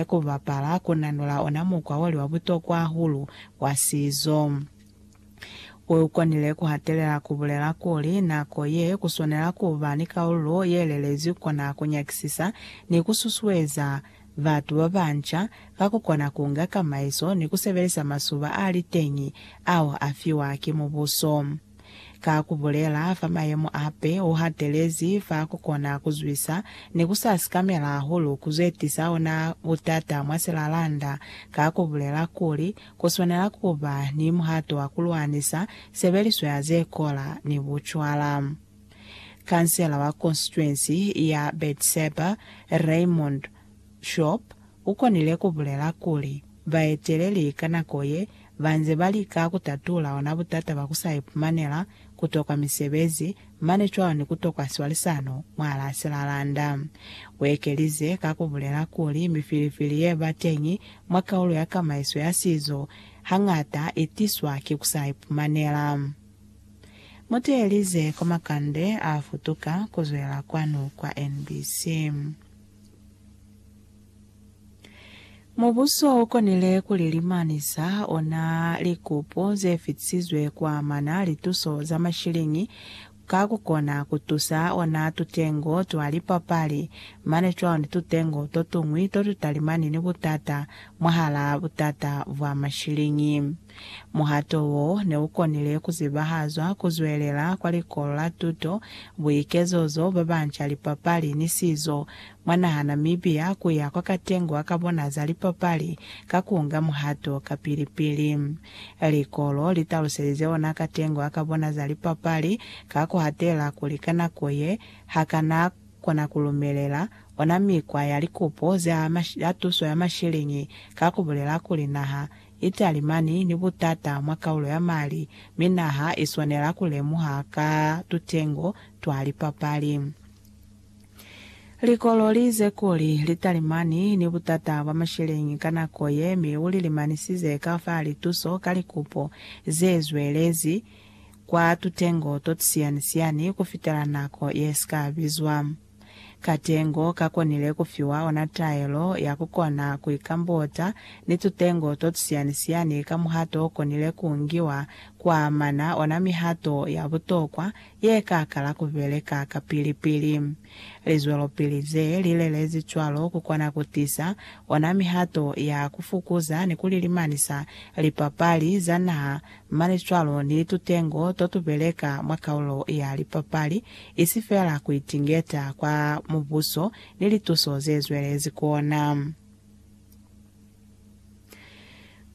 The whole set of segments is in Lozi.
Ku bapala ku nanula ona mukwa oli wa butokwa hahulu wa sizo. U konile ku hatelela ku bulela kuli, nako ye ku swanela ku ba ni kaululo ye lelezwi kona ku nyakisisa ni ku susueza batu ba banca ka ku kona ku nga kamaiso ni ku sebelisa masuba a li teñi ao a fiwa ki mubuso. Ka ku bulela fa mayemo a pe o hatelezi fa ku kona ku zwisa ni ku sa sikamela hahulu ku zwetisa ona butata mwa silalanda, ka ku bulela kuli ku swanela ku ba ni muhato wa ku lwanisa sebeliso ya ze kola ni bucwala. Kansela wa konsituensi ya Bedseba, Raymond Shop, U konile ku bulela kuli, baeteleli ka nako ye ba nze ba lika ku tatula ona butata bwa ku sa ipumanela, ku tokwa misebezi, mane cwalo ni ku tokwa swalisano mwahal'a silalanda. U ekelize ka ku bulela kuli mifilifili ye ba teñi mwa kaulo ya kamaiso ya sizo hañata i tiswa ki ku sa ipumanela. Mu teelize Komakande a futuka ku zwela kwanu kwa NBC. Mubuso u konile ku lilimanisa ona likupo ze fitisizwe ku amana li tuso za mashiliñi ka ku kona ku tusa ona tutengo twa lipapali, mane cwalo ni tutengo to tuñwi to tu talimani ni butata mwahalaa butata bwa mashiliñi. Muhato wo ne u konile ku zibahazwa ku zwelela kwa likolo la tuto, buikezozo, ba banca, lipapali, ni sizo. Mwa naha Namibia, ku ya kwa katengwa ka bona za lipapali ka ku nga muhato ka pili-pili. Likolo li taluselize ona katengwa ka bona za lipapali ka ku hatela kuli ka nako ye, ha ka na kona ku lumelela ona mikwa ya likupo za tuso ya mashiliñi ka ku bulela kuli naha Italy mani ni butata mwa kaulo ya mali, mi naha i swanela ku lemuha ka tutengo twa lipapali. Likolo li ize kuli, Litaly mani ni butata bwa masheleñi ka nako ye, mi u li limanisize ka fa lituso ka likupo ze zwelezi kwa tutengo to tusiyani-siyani ku fitela nako ye si ka bizwa. Katengo ka konile ku fiwa ona taelo ya ku kona ku ikambota ni tutengo to tusiani-siani ka muhato o konile ku ngiwa kwa amana ona mihato ya butokwa ye ka kala ku beleka kapili-pili. Lizwelopili ze li lelezi cwalo ku kona ku tisa ona mihato ya ku fukuza ni ku lilimanisa lipapali za naha Mane cwalo ni tutengo totubeleka mwa kaulo ya lipapali, isi feela kuitingeta kwa Mubuso ni lituso zezwelezi kuona.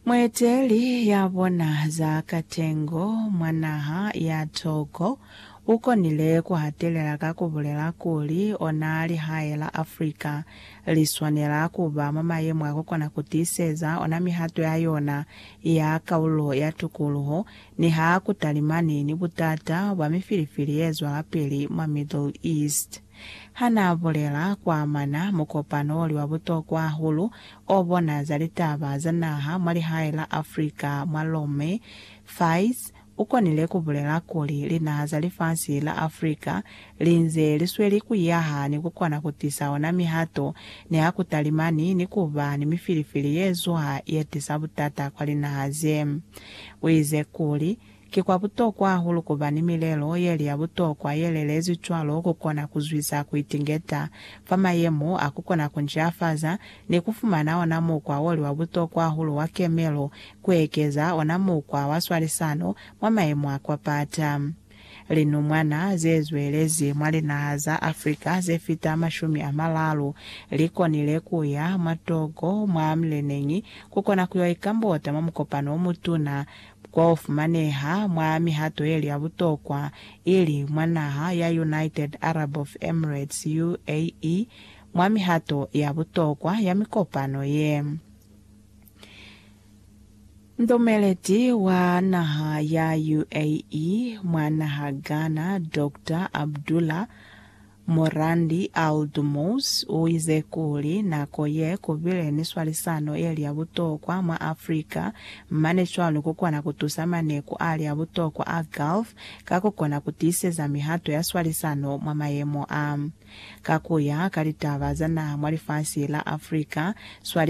Mueteli yabona za katengo mwa naha ya Togo ukonile kuhatelela ka kubulela kuli ona lihae la Africa liswanela kuba mwa mayemo akukona kutiiseza ona mihato ya yona ya kaulo ya tukuluho, niha ku talimani ni butata bwa mifilifili ye zwalapili mwa Middle East. Ha n'a bulela kwa amana mukopano o li wa butokwa hahulu o bona za litaba za naha mwa lihae la Afrika mwa Rome, Faiz, Ukonile kubulela kuli linaha za lifasi la Africa linze lisweli kuiyaha ni kukona kutisa ona mihato niha kutalimani ni kuba ni mifilifili yezuha yetisa butata kwa linaha ze. Uize kuli, Ki kwa butokwa hahulu kuba ni milelo yeli ya butokwa yelelezi cwalo kukona kuzwisa kuitingeta fa mayemo a kukona kunceafaza ni kufumana ona mukwa oli wa butokwa hahulu wa kemelo kuekeza ona mukwa wa swalisano mwa mayemo a kwa pata. Linumwana zezwelezi mwa linaha za Africa zefita mashumi amalalu likonile kuya mwa Togo mwa mileneñi kukona kuyo ikambota mwa mukopano omutuna ofumaneha mwa mihato yeli ya butokwa, ili mwa naha ya United Arab of Emirates, UAE, mwa mihato ya butokwa ya mikopano ye. Mutomeleti wa naha ya UAE mwa naha Ghana, Doctor Abdullah Morandi Al Dumous, u ize kuli, Nako ye ku bile ni swalisano ye li ya butokwa mwa Africa, mane cwalo ku kona ku tusa maneku a li a butokwa a Gulf ka ku kona ku tiiseza mihato ya swalisano mwa mayemo a. Ka ku ya ka litaba za naha mwa lifasi la Africa, swalisano